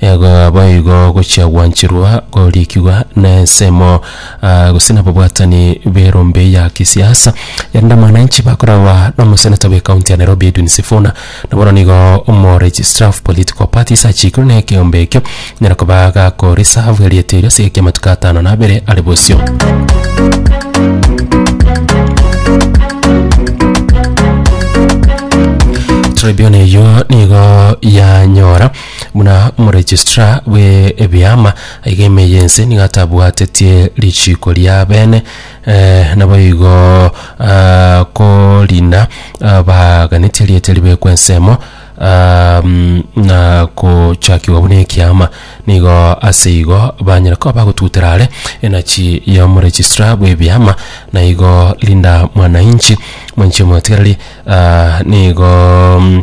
Igo boigo gochia gwancherwa koriikigwa na ensemo, ah, gose nababwatani b'erombe ya kisiasa erinde mwananchi bakoragwa nomoseneta bw'ekaunti ya Nairobi Edwin Sifuna, na bono nigo omoregistrar of political parties achiikirwe na ekeombe ekio nyara koba gakoreserve erieta erio ase egeki amatuko atano na abere are bosio. Tribune eyio nigo yanyora Buna omoregistrar bwe ebiama, iga ime y'ense nigo atabwatetie richiiko ri'abene, eh, naboigo ah, korina ah, baganetie erieta ribekwe ensemo ah, mm, na kochakigwa buna ekiama. Nigo ase igo banyare koba bagotutera are enachi y'omoregistrar bwe ebiama, na igo Linda Mwanainchi, mwanchi omotigereri, ah, nigo mm,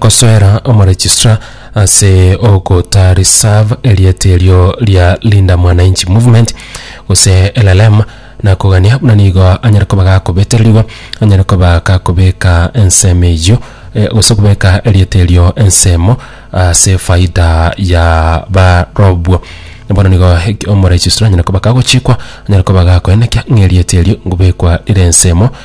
gosoera omoregistrar ase ogota reserve erieta erio ria Linda Mwananchi Movement gose LLM na kogania buna nigo anyare koba gakobetererigwa anyare koba gakobeka ensemo eyio eh, gose kobeka erieta erio ensemo ase faida ya barobwo bono nigo omoregistrar anyare koba kagochikwa anyare koba gakoenekia ng'a erieta erio ngobekwa rire ensemo